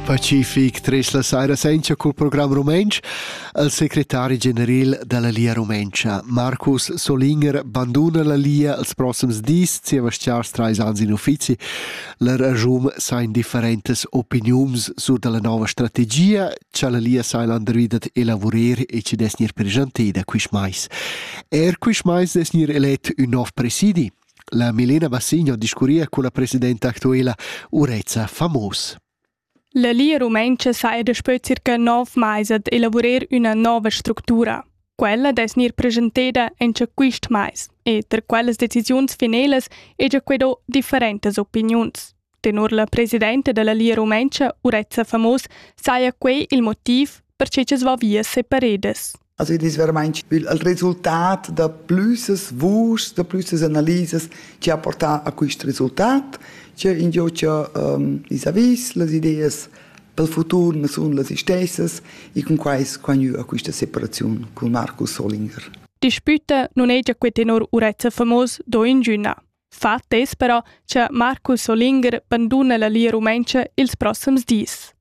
Pacific tres la saira senza cul program rumentsch al secretari general dalla Lia Rumentscha Marcus Solinger banduna la Lia als proxims dis Sebastians trais ans in uffizi la ragium sain differentas opiniuns sur dalla nova strategia cha la Lia sai landridat elavurer e ci des gnir presentada quist mais. Er quist mais des gnir elet ün nov presidi. La Milena Bassigno discurria cun la presidenta actuela Urezza Famos. La Lia Rumentscha sa è daspö circa nov mais ad elavurer üna nova structura. Quella dess gnir presenteda in quist mais e tra quellas decisiuns finelas hegia que do differentas opiniuns. Tenor la presidenta dalla Lia Rumentscha, Urezza Famos, saja quei il motiv per che che va via separedas. Also das wäre mein Spiel als Resultat da plüssas vuschs, da plüssas analisas che ha portà a questo resultat, che in gio che um, is avis las ideas pel futur ma sun las istessas e con quai squagnu a questa separazione con Markus Solinger. Dispute non è già que tenor Urezza Famos do in Gina. fa attess però cha Marcus Olinger banduna la Lia Rumentscha ils prossims dis.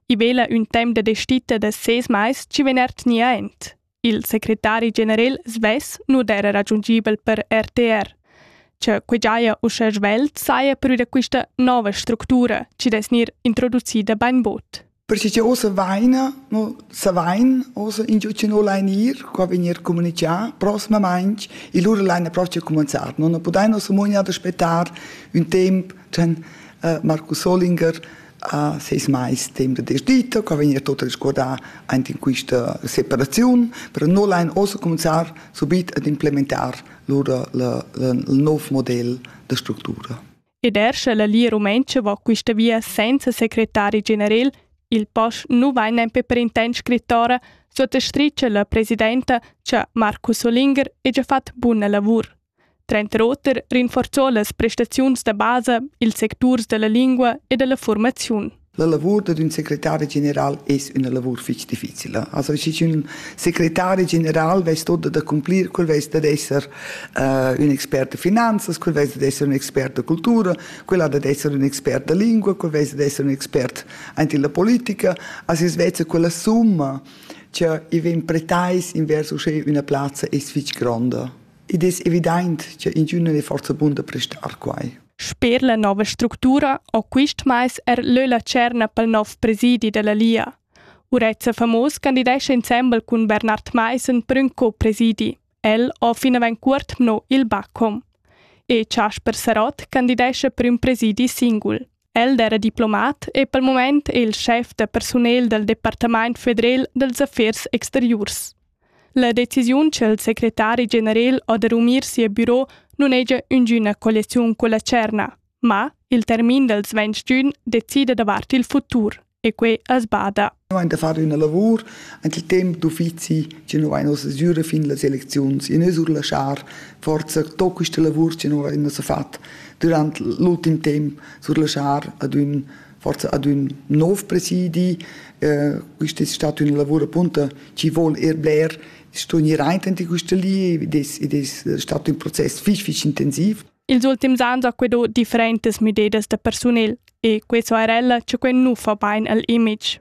I vela ün temp da destita da seis mais chi vegn ertgni aint. Il secretari general svess nu d'era raggiungibel per RTR. Che que giaja uschè svelt saja pür da quista nova structura chi dess gnir introducida bainbod. Perche cha ussa vaina, no savain ussa ingio chi no lain ir, qua vegnir comunichà prosmamaing e lura laina propcha cumanzar. No, no pudain ussa mo ad aspettar ün temp chan uh, Markus Solinger a seis mais temp da desdita, qua vegnir tot resguardà aint in quista separaziun, però no lain ussa cominciar subit ad implementar lura le, le, il nov model da structura. ed er sche la Lia Rumentscha va quista via senza secretari generel, il pass nu vain nempe per intent scrittora, suottastricha la presidenta cha Marcus Olinger he già fat buna lavur. Trent Roter rinforzò las prestaziuns da basa, ils secturs da la lingua e da la fuormaziun. La lavur dad ün secretari general es üna lavur fich difficila. Also schi ün secretari general vess tot da cumplir, quel vess dad esser uh, ün expert de finanzas, quel vess dad esser ün expert de cultura, quel ha dad esser ün expert de lingua, quel vess dad esser ün expert ant la politica, as es vezza quella summa che i ven pretais invers usche üna plazza es fich gronda. Id es evident che in giunne ne forza bun da prestar quai. Sper la nova structura ho quist mais er lö la tscherna pel nouv presidi da la Lia. Urezza Famos candidescha insembel cun Bernard Maissen prün co-presidi. El ho finavant cuort mno il Bacom. E Chasper Sarott candidescha prüm presidi singul. El era diplomat e pel moment è il chef da personel dal Departament federal dals affers exteriurs. La decisiun cha'l secretari generel ho da rumir sia biro nun hegia üngüna colliaziun culla tscherna, ma il termin dals ventg d'ün decida davart il futur e quai as bada. Noi hain da far üna lavur ant il temp d'uffizi chi nu vain ussa sgüra fin las elecziuns e nus surlaschar forza to quista lavur chi nu vain ussa fat durant l'ultim temp surlaschar ad ün forza ad ün nov presidi. Eh, quist es stat ün lavur appunto chi vol er bler sto gnir aintenti quista li ed es, ed es stat ün process fich fich intensiv. Ils ultims ans ho quedò differentas müdedas da persunel e questo era ella cha quel nu fa bain al image.